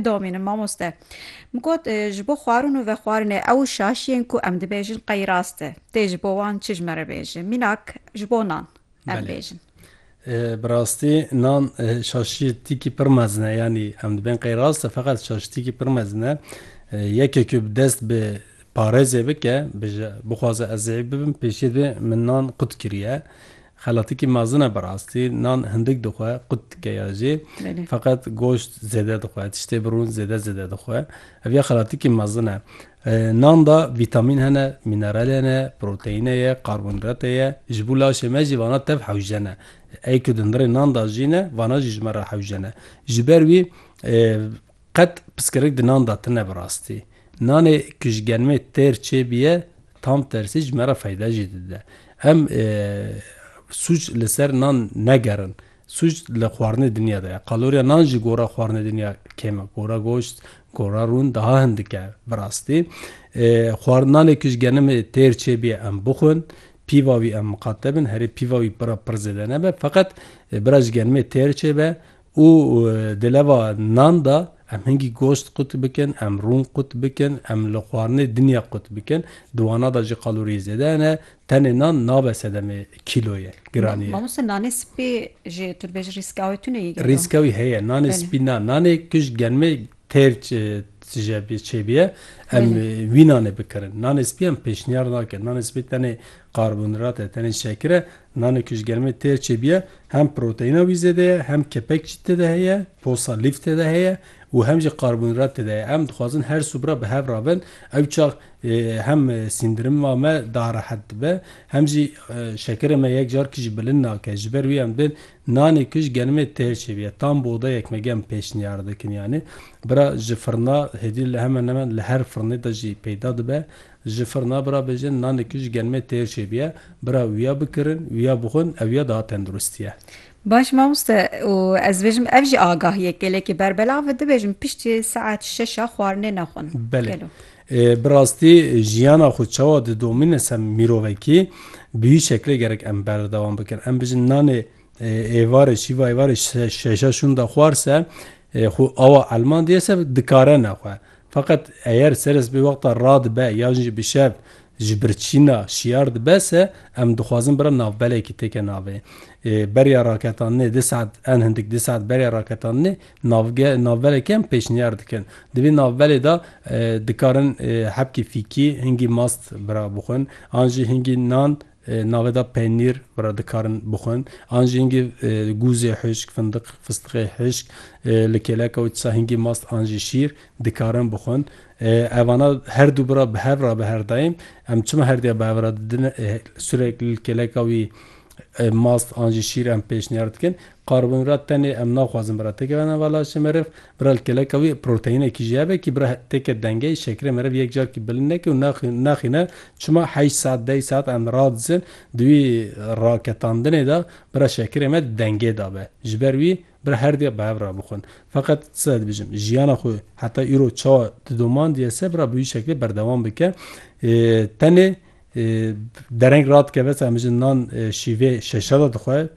Domînim mamoste. Min got ji bo xwarin û vexwarinê ew şaşiyên ku em dibêjin qey rast e. Tê ji bo wan çi ji me re bêje. Mînak ji bo nan em bêjin. Bi rastî nan şaşiyetîkî pir mezin e. Yanî em dibên qey rast e feqet şaşitîkî pir mezin e. Yekê ku bi dest bi parêzê bike, bije bixwaze ez zêyîf bibim pêşî divê min nan qut kiriye. Xelatikî mezin e bi rastî, nan hindik dixwe, qut dike ya jê, feqet goşt zêde dixwe, tiştê bi rûn zêde zêde dixwe. Ev ya xelatikî mezin e. Nan de vîtamîn hene, mînerel hene, proteîne ye, karbonhîdratê ye, ji bo laşê me jî vana tev hewce ne. Ey ku di ndirê nan de jî ne, vana jî ji me re hewce ne. Ji ber wî Qet piskirik di nan de tine bi rastî. Nanê ku ji genimê têr çêbiye tam tersî ji me re feyde jî dide. Em sûc li ser nan negerin. Sûc li xwarinê dinya de ye. Kaloriya nan ji gora xwarinê dinya kêm e. Gora goşt, gora rûn daha hin dike bi rastî. Xwar nanê ku ji genimê têr çêbiye em bixwin. Pîva wî em miqate bin. Herê pîva wî pira pir zêde nebe. Feqet bira ji genimê têr çêbe. Û di leva nan de em hingî gost qut bikin, em rûn qut bikin, em li xwarinê dinya qut bikin. Di wana de jî kaloriyê zêde hene. Tenê nan nabe sedemê kîloyê, giraniyê. Mamoste nanê spî jî tu dibêjî rîskawê tune yê gelo? Rîskawî heye. Nanê spî na. Nanê ku ji germê Têr tije bê çêbiye em wî nanê bikirin. Nanê spî em pêşniyar nakin. Nanê spî tenê karbonhîdrat e, tenê şekir e. Nanê ku ji germê têr çêbiye hem proteîna wî zêde ye, hem kepek jî tê de heye, posa lîf tê de heye û hem jî karbonhîdrat tê de heye. Em dixwazin her subra bi hev re bin. Ew çax hem sîndirima me daha rehet dibe hem jî şekirê me yek carkî jî bilind nake. Ji ber wî em dê Nanê ku ji genimê têr çêbiye tam bi odayek me germ pêşniyar dikin yanî bira ji firna hêdî li hemen hemen li her firnê de jî peyda dibe ji firna bira bêjin nanê ku ji genimê têr çêbiye bira wiya bikirin wiya bixwin ew ya daha tendurist ye. Baş mamoste û ez dibêjim ev jî agahiyek gelekî berbelav e dibêjim piştî saet şeş a xwarinê nexwin. Belê. Ê bi rastî jiyana xwe çawa didomîne ser mîrovekî bi wî şeklê gerek em berdewam bikin. Em bijin nanê êvarê şîva êvarê şeşa şûn de xwar se xwe awa elman diye se dikare ne xwe. Feqet eyer seres bi wexta ra dibe yan jî bi şev ji birçîna şiyar dibe se em dixwazin bira navbelekî têke navê. Beriya raketandinê di saet en hindik di saet beriya raketandinê Navge, navbere kem pêşniyar dikin. Di vî navberê de dikarin hebkî fîkî, hingî mast bira bixwin an jî hingî nan navê de penîr bira dikarin bixwin an jî hingî gûzê hişk, findiq, fistiqê hişk li kêleka û çisa hingî mast an jî şîr dikarin bixwin. Evana her du bira bi hev re biherdayên em çima herdêya bi hev re didin, sûrek li kêleka wî Mast an jî şîr em pêşniyar dikin. Karbonhîdrat tenê em naxwazin bira têke verin va laşê meriv. Bira li keleka wî proteinekî jî hebe kî bira têke dengeyê şekerê meriv yek carkî bilind neke û naxîne çima heşt saet deh saet em radizin di wî raketandinê de bira şekerê me di dengê de be. Ji ber wî bira her dê bi hev re bixwin. Feqet tizede dibijim jiyana xwe heta îro çawa didomandiyese bira bi wî şeklê berdewam bike. Tenê Dereng radikeve se em ji nan şîvê şeşe de dixwe,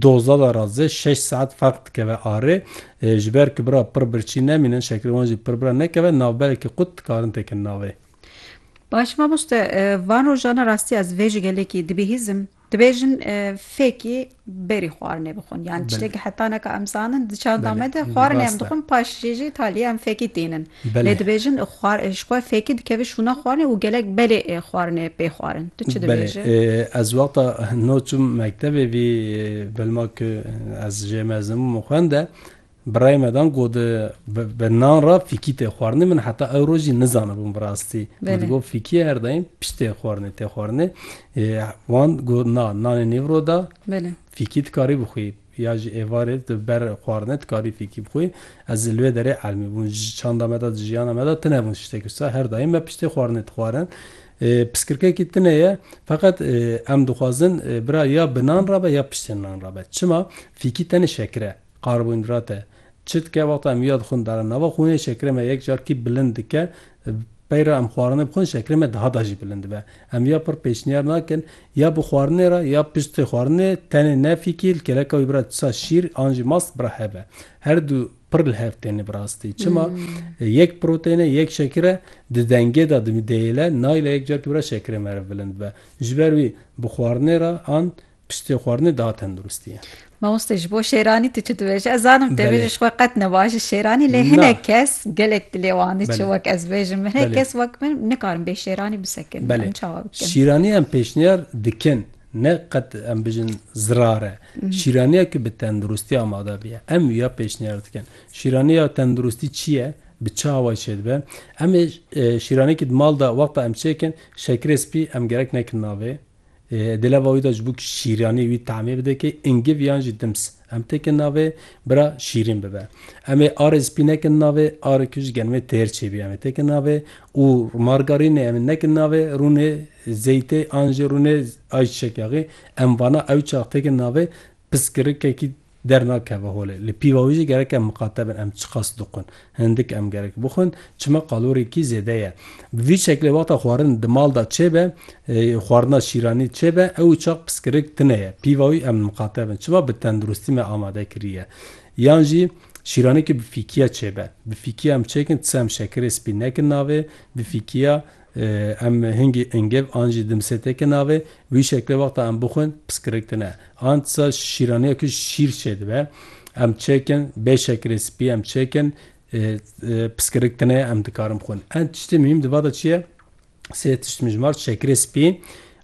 doza de ra ze şeş saet ferq dikeve arê. Ji ber ku bira pir birçî nemînin, şekerê wan jî pir bira nekeve, navberekî qut dikarin tekin navê. Baş mamoste, van rojan e rastî ez vê ji gelekî dibihîzim. Dibêjin fêkî berî xwarinê bixwin yan tiştekî heta neka em zanin di çanda me de xwarinê em dixwin paş jê jî talî em fêkî tînin lê dibêjin ji xwe fêkî dikeve şûna xwarinê û gelek belê ê xwarinê pê xwarin tu çi dibêjî? Ez wexta no çûm mektebê vî bilma ku ez jê mezin bûm û xwende Birayê me dan got bi nan re fîkî tê xwarinê. Min heta ewro jî nizanibûm bi rastî. Min digot fîkî her daîm pişt tê xwarinê tê xwarinê. Wan got na nanê nîvro de fîkî dikarî bixwî. Ya ji êvarê di ber xwarinê dikarî fîkî bixwî. Ez li wê derê elmî bûm. Ji çanda me de ji jiyana me de tune bûn tiştekî wisa. Her daîm me piştê xwarinê dixwarin. Piskirkekî tune ye. Feqet em dixwazin bira ya bi nan re be ya piştê nan re be. Çima? Fîkî tenê şekir e. Karbonhîdrate çi dike? Wexta em ya dixwin dana nava xwûnê şekerê me yek carkî bilind dike. Pey re em xwarinê bixwin şekerê me daha da jî bilind dibe. Em ya pir pêşniyar nakin ya bi xwarinê re ya piştî xwarinê tenê ne fîkî li kêleka wî bira tisa şîr an jî mast bira hebe. Her du pir li hev tên bi rastî. Çima? Yek proteyne yek şekere di dengê de dimî dêyile nayile yek carkî bira şekerê meriv bilind bibe. Ji ber wî bi xwarinê re an Piştê xwarinê daha tenduristî ye. Mamoste ji bo şêranî tu çi dibêjî? Ez zanim tê bêjî ji xwe qet ne baş ji şêranî lê hinek kes gelek dilê wan diçe wek ez bêjim min hinek kes wek min nikarin bê şêranî bisekin em çawa bikin? Şîranî em pêşniyar dikin ne qet em bijin zirar e. Şîraniya ku bi tenduristî amade biye em wiya pêşniyar dikin. Şîranî ya tenduristî çi ye? Bi çi awayî çêdibe? Em ê şîranekî di mal de wexta em çêkin şekirê spî em gerek nekin navê. Di lava wî de ji bo ku şîranî wî temê bide kê îngiv yan jî dims em têkin navê bira şîrîn bibe. Em ê arê spî nekin navê arê ku ji genimê têr çêbî em ê têkin navê û margarînê em ê nekin navê rûnê zeytê an jî rûnê ayçiçek yaxê em vana ewçax têkin navê piskirikekî Dernakeve holê. Li pîva wî jî gerek em miqate bin em çiqas dixwin. Hindik em gerek bixwin. Çima qalorêkî zêde ye. Bi vî şeklê wexta xwarin di mal de çêbe, xwarina şîranî çêbe ew çax piskirik tune ye. Pîva wî em miqate bin. Çima bi tenduristî me amade kiriye. Yan jî şîranekî bi fîkiya çêbe. Bi fîkiya em çêkin ti sey em şekirê spî nekin navê. Bi fîkiya Em hingî îngev an jî dimsêteke navê. Bi wî şeklê wexta em bixwin piskirik tune. An tisa şîraniya ku şîr çêdibe em çêkin, bê şekerê spî em çêkin piskirik tune ye em dikarin bixwin. An tiştê muhîm di va de çi ye? Sê tişt mijmar, şekerê spî,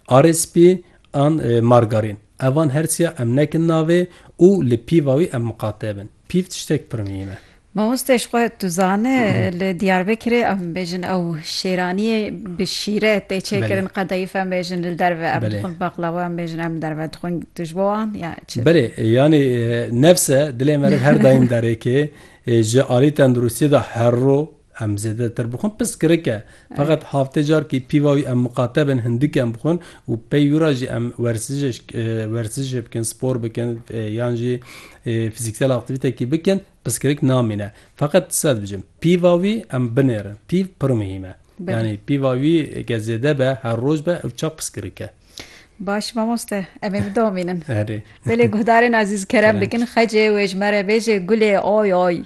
arê spî an margarîn. Evan her çiya em nekin navê û li pîva wî em miqate bin. Pîv tiştek pir mîm e. Mamostê ji xwe tu zane li Diyarbekirê em bêjin ew şêraniyê bi şîre tê çêkirin qedeyîf em bêjin li derve em dixwin baqlawa em bêjin em li derve dixwin tu ji bo wan ya çi? Belê yanî nefs e dilê me re her daîm derêkê ji alî tenduristiyê de herro Em zêdetir bixwin piskirik e. Feqet haftê carkî pîva wî em miqate bin hindik em bixwin û pey wî re jî em werzijê bikin, spor bikin yan jî fizîksel aktîvîtekî bikin piskirik namîne. Feqet ti se dibijim pîva wî em binêrin. Pîv pir muhîm e. Yanî pîva wî ge zêde be her roj be ew çax piskirik e. Baş mamoste em ê bidomînin. Erê. Belê guhdarên ezîz kerem bikin xecê wê ji me re bêje gulê oy oy.